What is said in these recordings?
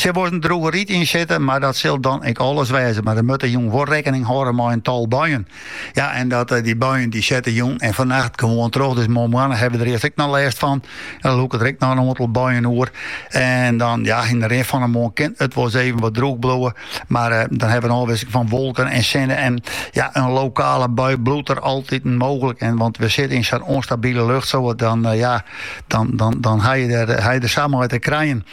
Sil wolris in droege rite yn sitte, mar dat sil dan ek alles wêze. Mar der moatte jûn wol rekkening hâlde mei in tal buien. Ja, en dat, eh, dy buien dy sette jûn en fannacht gewoan troch, dus moarnmoarn hawwe we der earst ek noch lêst fan. En dan lûke der ek noch in oantal buien oer. En dan, ja, yn de rin fan de moarn kin it wol eens even wat droech bliuwe, mar eh, dan hawwe we in ôfwisseling fan wolken en sinne. En ja, in lokale bui bliuwt der altyd mooglik. En want we sitte yn sa'n ûnstabile lucht, dat dan, eh, ja, dan, dan, dan ha je der, ha je der sa mei te krijen.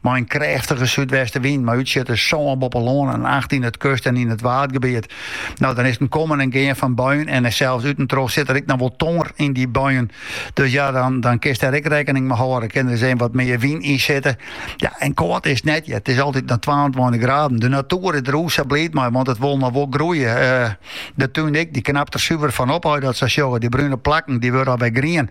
Mei in krêftige súdwestewyn mei útsjitters sân boppe lân en acht yn it kust en yn it waadgebiet. No, dan is 't in kommen en gean fan buien en sels útentroch sit der ek noch wol tonger yn dy buien. Dus ja, dan, dan kinst der ek rekkening mei hâlde. Kin der eens wat mear wyn yn sitte. Ja, en kâld is 't net hear. It is altyd noch 22 graden. De natuer is der o sa bliid mei, want it wol noch wol groeie. Eh, de tún ek, dy knapt der suver fan op as je dat sa sjogge. Dy brune plakken, dy wurde alwer grien.